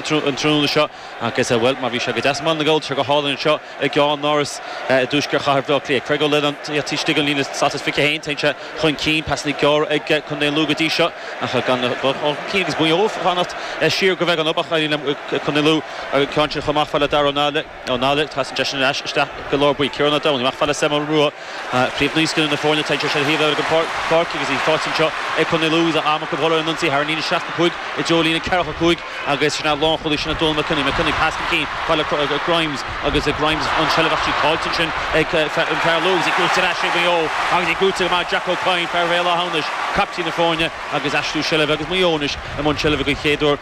an tráthnóna seo agus, bhuel, má bhí sé go deas i mBaile na nGall, tá sé go hálainn anseo i gCeannáras i dtuaisceart chathair Bhaile Átha Cliath. Craig Ó Leannáin taobh istigh den líne Status 21, téann sé chun cinn, pasanna gearra ag contae Lú go dtí seo ag gabháil chun cinn agus Maigh Eo ag fanacht siar go bheag. An Obach, éiríonn le contae Lú an ceann sin chomh maith, fad le Daire Ó Ó Náille, téann seisean ar ais isteach go Lár Buí. Ciarán Ó Domhnaigh, amach fad le Sam Ó Maolruaidh, príomh naíscoileanna na foirne, atá ag siúl ar shuíomh lár na páirce agus í faighte anseo ag Contae Lú tá am acu dhul ar an ionsaí thar an líne 65 i dtreo líne 45 agus sin a lánchúlaí sin ag Dónal McKenny, McKenny, pas chun cinn, fad le Grimes agus Grimes i seilbh ach tá sí caillte ansin ag fear Lú agus í gnóite ar ais ag Maigh Eo agus í gnóite go maith ag Jack Ó Cadhain, fear Bhéal Átha hAmhnais, caiptín na foirne agus aistriú seilbhe agus Maigh Eo anois i mbun seilbhe don chéad uair.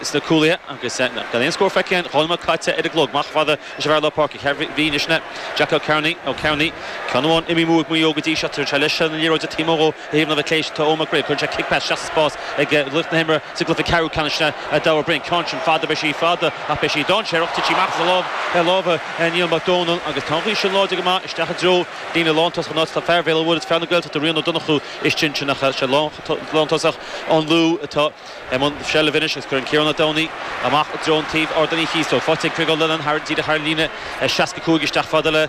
sna cúlaithe agus gan aon scór feicthe againn, dhá nóiméad caite ar an gclog. Amach chomh fada leis an bhfear lár páirce Chill Mhíona anois, sin é Jack Ó Cearnaigh, Ó Cearnaigh, ceann amháin imithe amú ag Maigh Eo go dtí seo. Tugann sé leis an liathróid taobh amuigh ó thaobh na clé seo Eoghan McGreal. Cuireann sé cic pas isteach sa spás ag laoch na himeartha sa gcluiche ceathrú ceannais sin é Daire Ó Broin. Ceann sin fada, beidh sí fada ach beidh sí dáinséarach. Titfidh amach as lámha Niall Mac Dónaill agus tá an ghaoth sin láidir go maith isteach i dtreo líne lántosach an áit atá fear Bhéal an Mhuirthead, fear na Gaeltachta Rian Ó Donnchú istigh ansin ach is é lántosach an Lú atá. I mbun seilbh anois agus cuireann Ciarán Ó Domhnaigh amach i dtreo an taoibh Ardán Uí Chíosóig, faighte ag Craig Ó Leannáin thar an díreach thar an líne, 65, isteach fad le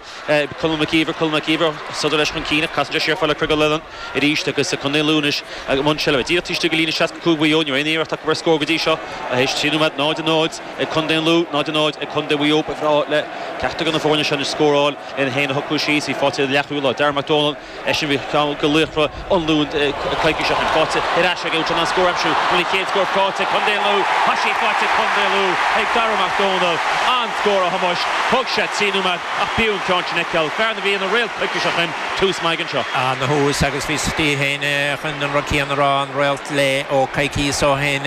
Conall Mac Íomhair. Conall Mac Íomhair ag sodar leis chun cinn ach casann sé siar fad le Craig Ó Leannáin arís agus Contae Lú anois i mbun seilbhe. Díreach taobh istigh de líne 65 Mhaigh Eo, níl aon iarracht acu ar scór go dtí seo tar éis trí nóiméad. 0-0 ag Contae an Lú, 0-0 ag Contae Mhaigh Eo. Ba bhreá le ceachtar de na foirne seo anois scóráil le hiad féin a shocrú síos. Í faighte ag an leathchúlaí láir, Darragh Mac Dónaill, Eisean a bhí ar cheann de laochra an Lú coicís ó shin. Faighte ar ais aige, ag iarraidh an scór a aimsiú agus an chéad scór faighte ag Contae Lú. Tosach faighte do Chontae Lú ag Darragh Mac Dónaill, an-scór a Thomáis, thóg sé trí nóiméad ach b'fhiú an ceann sin a fheiceáil, fear a bhí ina réalt coicís ó shin, tús maith aige anseo. An-thús agus bhíos-sa díreach chun an rud céanna a rá, an réalt leo coicíos ó shin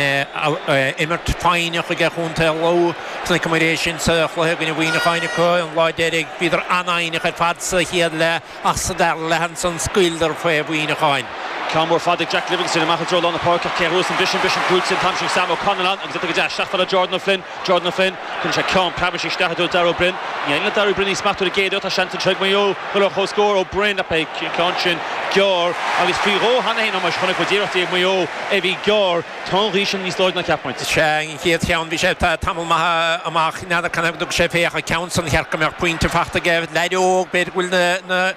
imirt foighneach aige Contae Lú. Chonaiceamar é sin sa chluiche i gcoinne Mhuineacháin acu an lá deiridh, bhíodar an-fhoighneach ar fad sa chéad leath. Ach sa dara leath ansan scaoileadar faoi Mhuineacháin. Ceann mór fada ag Jack Livingstone amach i dtreo lár na páirce ach cé a thabharfas an bisean, bisean cúil sin? Táimse ag Sam Ó Callanáin agus tugtar isteach fad le Jordan Ó Floinn. Jordan Ó Floinn, cuireann sé ceann preabairsí isteach i dtreo Daire Ó Broin. Ní fhaigheann Daire Ó Broin aon smacht ar an gcéad iarracht. Tá seans anseo ag Maigh Eo dul ar chomhscór. Ó Broin, ach beidh an ceann sin gearr agus faoi dhó cheana féin. a Thomáis, chonaic muid iarrachtaí ag Maigh Eo a bhí gearr. Tá an ghaoth sin níos láidre ná cheap muid. Sea, an chéad cheann, bhí sé tamall maith amach. N'fheadar, canathaobh go dtug sé fé ach an ceann san, ba cheart go mbeadh pointe fachta aige. Leaid óg, b'fhéidir go bhfuil na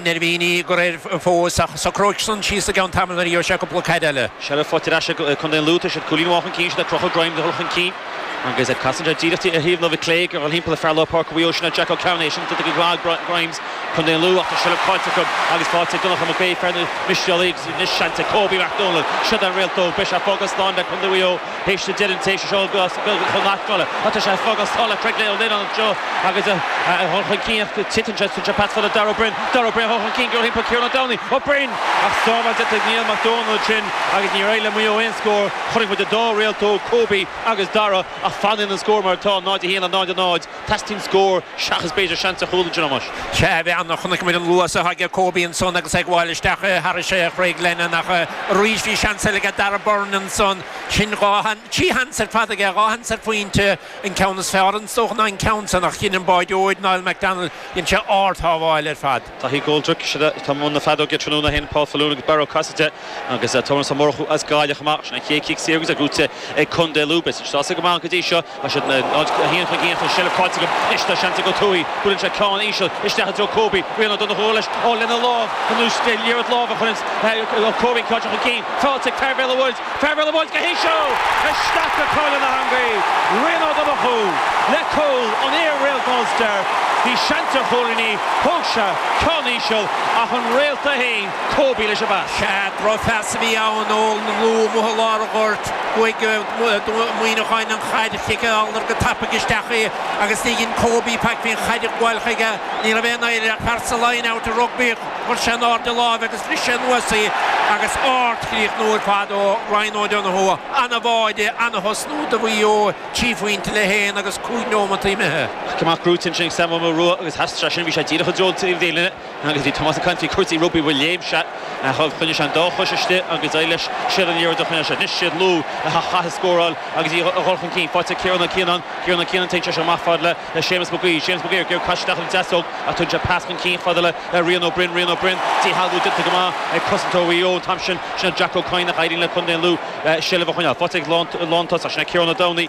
neirbhíní ag cur air fós, ach socróidh san síos i gceann tamaill nuair a gheobhaidh sé cúpla caid eile. Seilbh faighte ar ais ag Contae an Lú tá siad cúilín amháin chun cinn, siad ag crochadh greim de dhul chun cinn. Agus casann sé díreach ar thaobh na láimhe clé, ag dul thimpeall ar fear lár páirce Mhaigh Eo, sin é Jack Ó Cearnaigh. Is iondúil go gcraithfidh Brian Grimes, Co Lú, ach tá seilbh caillte acu agus faighte ag Donncha Mac Aodha, fear na Mistéalach, agus anois seans ag Kobe Mac Dónaill seod é an réaltóg. Beidh sé ag fágáil slán le Contae Mhaigh Eo théis deireadh an tséasúir seo chun na hAstráile, ach tá sé ag fágáil slán le Craig Ó Lionáin anseo agus a dhul chun cinn, ach tugann sé an pas fad le Darragh Ó Beirn. Darragh Ó Beirn a dhul chun cinn dul thimpeall Ciarán Ó Domhnaill. Ó Brinn! Ach sábháil déanta ag Niall Mac Dónaill ansin agus níor éirigh le Maigh Eo aon scór. Chonaic muid an dá réaltóg, Kobe agus Darragh, ach fanann an scór mar atá, 0 1 le 0 0. Teastaíonn scór seachas b'fhéidir seans ar chúl ansin a Thomáis. Sea, bhí an, chonaic muid an luas atá ag Kobe ansan agus é ag gabháil isteach thairis Chraig Lennon ach arís bhí seans eile aige, Darragh Beirne ansan. Sin dhá, trí sheans ar fad aige, dhá sheans ar phointe, an ceann is fearr is dócha ná an ceann san ach dhein an báireoir, Niall McDonnell, dhein sé ardshábháil ar fad. Daithí Coldrick, sin é atá i mbun na feadóige tráthnóna, a sheinn Paul Faloon agus Barry Cassidy, agus Tomás Ó Murchú as Gaillimh chomh maith, sin é an chéad chic saor agus é buaite ag Contae Lú. Beidh siad sásta go maith go dtí seo, tá siad 0-1 chun cinn ach an seilbh caillte acu, anois tá seans ag Ó Tuathaigh, buaileann sé ceann íseal isteach i dtreo Kobe, Rian Ó Donnchú leis, ó lena lámh anuas, liathróid láimhe a chuireanns Kobe caite chun cinn, faighte ag fear Bhéal an Mhuirthead. Fear Bhéal an Mhuirthead go híseal isteach go cúl na heangaí, Rian Ó Donnchú le cúl an fhir réalt Munster. Bhí seans ar chúilín, thóg sé ceann íseal ach an réalta fhéin Kobe leis an bpas. Sea, drochphas a bhí ann ó Lú amuigh i lár an ghoirt. Bhuaigh Maigh Eo an chaid, chiceáladar go tapaidh isteach í agus ní dhein Kobe faic faoin chaid a ghabháil chuige. Ní raibh aon oidhre air ach fear sa Line Out i rugbaí. Chuir sé in airde a láimh agus bhris sé anuas í agus ardchríochnú ar fad ó Ryan O'Donoghue, an-bháide, an-thosnú do Mhaigh Eo, trí phointe le haon agus cúig neomataí imithe. Cic amach gnóite ansin ag Sam Ó Maolruaidh agus as sin bhí sé díreach i dtreo na taobhlíne agus bhí Tomás ag caint faoi chúrsaí rugbaí bhuel léim sé agus choinnigh sé an dá chois istigh agus d'éirigh leis siar an liathróid a choinneáil sé anois siad Lú a chaithfidh scóráil agus iad a dhul chun cinn faighte ag Ciarán Ó Cianáin Ciarán Ó Cianáin téann sé seo amach fad le le Séamus Mac Aoidh, Séamus Mac Aoidh ag gearradh isteach ar an deasóg ach tugann sé pas chun cinn fad le Rian Ó Broin, Rian Ó Broin, díshealbhú déanta go maith ag cosantóir Mhaigh Eo an t-am sin, sin é Jack Ó Cadhain ach éiríonn le contae an Lú seilbh a choinneáil. Faighte ag an lántosach, sin é Ciarán Ó Domhnaill,